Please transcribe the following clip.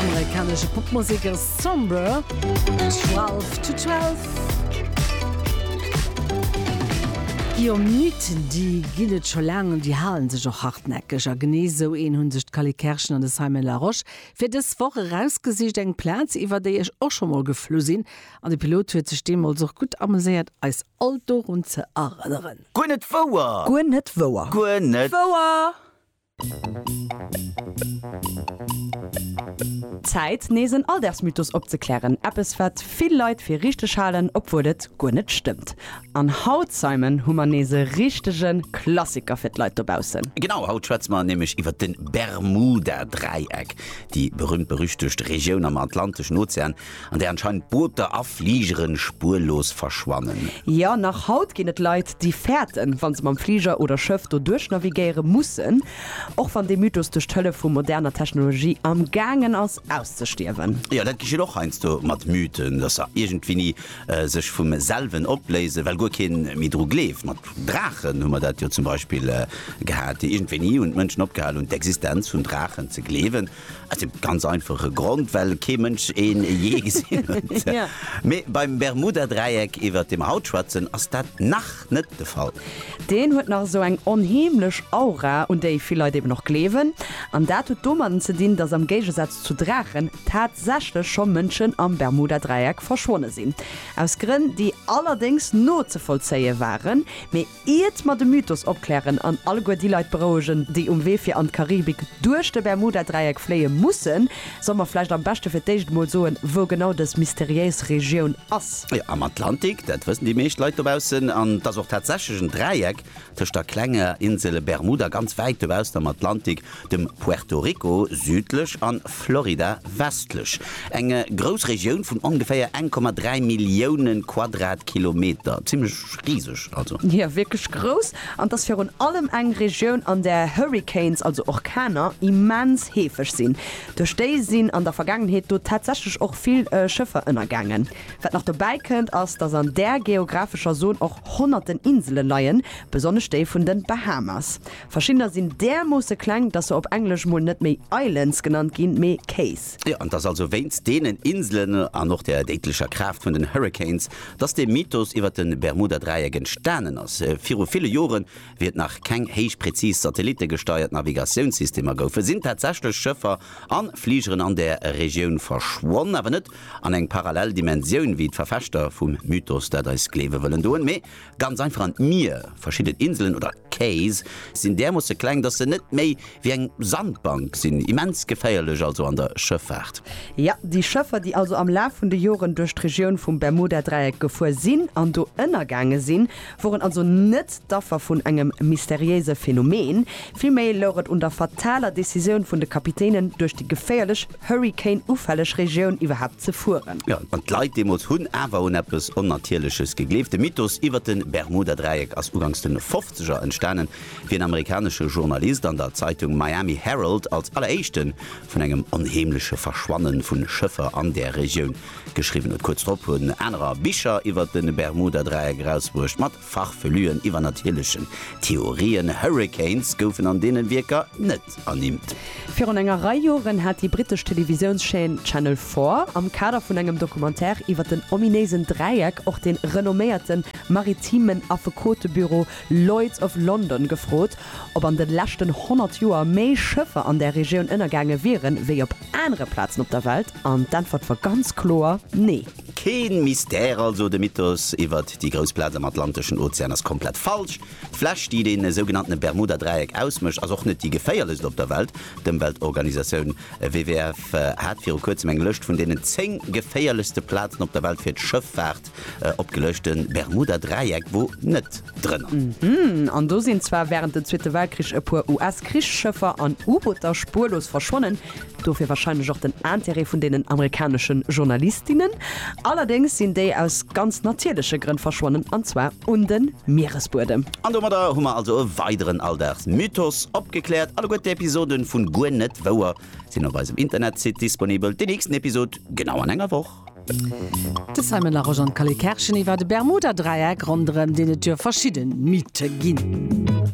Amerikanesche Popmusek ass Somber, Twelve to Twelve. Déi om Nuiten, déi ginn et scho laang an déi hale sech och hartnäckeg. A genee esou een hunn sech d'Cally Kerschen an de Simon Larosche fir dës Woch erausgesicht. Eng Plaz, iwwer déi ech och scho mol geflu sinn an de Pilot huet sech deemools och gutt ameséiert, eis all dorun ze erënneren. Guer net wouer! Guer net wouer! Guer net wouer! Zäit nees en Alldagsmythos opzeklären, eppes wat vill Leit fir richteg halen, obwuel et guer net stëmmt. An haut, Simon, hu mer nees e richtege Klassiker fir d'Leit dobaussen. Genau, haut schwätze mer nämlech iwwer de Bermuda-Dräieck, déi berühmt-berüchtegt Regioun am Atlanteschen Ozean, an där anscheinend Booter a Fligere spuerlos verschwannen. Jo, nach haut ginn et Leit, déi fäerten, wa se mam Fliger oder Schëff do duerchnavigéiere mussen, och wann dee Mythos duerch d'Hëllef vu moderner Technologie am gaangen ass auszestierwen. Jo, dat geschitt och heiansdo mat Mythen, dass se iergendwéini sech vum selwen opléisen, well guer kee méi dru gleeft. Mat Draachen hu mer dat jo zum Beispill gehat. Iergendwéini hunn d'Mënschen opgehal hunn, d'Existenz vun Draachen ze gleewen. Aus dem ganz einfache Grond, well kee Mënsch ee jee gesinn huet. Mee beim Bermuda-Dräieck, iwwert dee mer haut schwätzen, ass dat nach net de Fall. Deen huet nach esou eng onheemlech Aura, un déi vill Leit eben och gleewen. An dat huet domatten ze dinn, datt am Géigesaz zu Draachen tatsächlech scho Mënschen am Bermuda-Dräieck verschwonne sinn. Aus Grënn, déi allerdéngs nozevollzéie waren. Mee Iert mer de Mythos opklären an alleguer déi Leit berouegen, déi um Wee fir an d'Karibik duerch de Bermuda-Dräieck fléie mussen, solle mer vläicht am beschte fir d'éischt emol soen, wou genau dës mysteriéis Regioun ass. Jo, am Atlantik, dat wëssen déi meescht Leit dobaussen. An et ass och tatsächlech en Dräieck tëscht der klenger Insel Bermuda ganz wäit dobaussen am Atlantik dem Puerto Rico südlech an Florida westlech, eng grouss Regioun vun ongeféier 1,3 Millioune Quadratkilometer, zimmlech riseg also. Jo, wierklech grouss, an 't ass virun allem eng Regioun an där Hurricanes, also Orkaner, immens heefeg sinn. Duerch déi sinn an der Vergaangenheet do tatsächlech och vill Schëffer ënnergaangen. Wat nach dobäi kënnt, ass datt an där geographescher Zon och honnerten Insele leien, besonnesch déi vun de Bahamas. Verschiddener sinn därmoosse kleng, dass se op Englesch mol net méi Islands genannt ginn, mee Cays. Jo, an et ass also wéinst deenen Inselen an och der déidlecher Kraaft vun den Hurricanes, dass dee Mythos iwwer de Bermuda-Dräieck entstanen ass. Viru ville Joren, wéi et nach keng héich präzis satellittegesteiert Navigatiounssystemer goufen, sinn tatsächlech Schëffer a Fligeren an där Regioun verschwonn, awer net an eng parallel Dimensioun, wéi d'Verfechter vum Mythos dat eis gleewe wëllen doen, mee Ganz einfach an d'Mier. Verschidden Inselen, oder Cays, sinn därmoosse kleng, dass se net méi wéi eng Sandbank sinn. Immens geféierlech also an der Schëffaart. Jo, déi Schëffer, déi also am Laf vun de Joren duerch d'Regioun vum Bermuda-Dräieck gefuer sinn an do ënnergaange sinn, woren also net d'Affer vun engem mysteriéise Phänomen. Villméi louch et un der fataler Decisioun vun de Kapitänen, duerch déi geféierlech Hurrikan-ufälleg Regioun iwwerhaapt ze fueren. Jo, an d'Leit deemools hunn awer un eppes Onnatierleches gegleeft. De Mythos iwwer de Bermuda-Dräieck ass ugangs de Fofzeger entstanen, wéi en amerikanesche Journalist an der Zeitung Miami Herald als alleréischte vun engem onheemleche Verschwanne vu Schëffer an där Regioun geschriwwen huet. Kuerz drop hunn anerer Bicher iwwer de Bermuda-Dräieck erausbruecht, mat Farfelüen, iwwernatierlechen Theorien, Hurricanes goufen an deenen Wierker net ernimmt. Virun enger Rei Joren hat déi brittesch Televisiounschaîne Channel Four am Kader vun engem Documentaire iwwer den ominéisen Dräieck och de renomméierten maritimen Affekotebüro Lloyd's of London gefrot, ob an de leschten 100 Joer méi Schëffer an där Regioun ënnergaange wieren, wéi op anere Plazen op der Welt. An d'Äntwert war ganz kloer, Nee! Keen Mystère also, de Mythos iwwert déi grouss Plaz am Atlanteschen Ozean ass komplett falsch. D'Fläch, déi den sougenannten Bermuda-Dräieck ausmécht, ass och net déi geféierlechst op der Welt. D'Ëmweltorganisatioun WWF hat viru kuerzem eng Lëscht vun deenen 10 geféierlechste Plazen op der Welt fir d'Schëffaart opgelëscht. De Bermuda-Dräieck wor net. drënner. Mhmm, an do sinn zwar wärend dem Zweete Weltkrich e puer US-Krichsschëffer an U-Booter spuerlos verschwonnen, dofir wahrscheinlech och den Intérêt vun deenen amerikanesche Journalistinnen. Allerdéngs sinn déi aus ganz natierleche Grënn verschwonnen, an zwar un de Mieresbuedem. An domadder hu mer also e weideren Alldagsmythos opgekläert. Alleguer d'Episoden vun Guer net wouer sinn op eisem Internetsite disponibel. Déi nächsten Episode genau an enger Woch. De Simon Larosche an d'Cally Kerscheny war de Bermuda-Dräieck, ronderëm deen et jo verschidden Mythe ginn.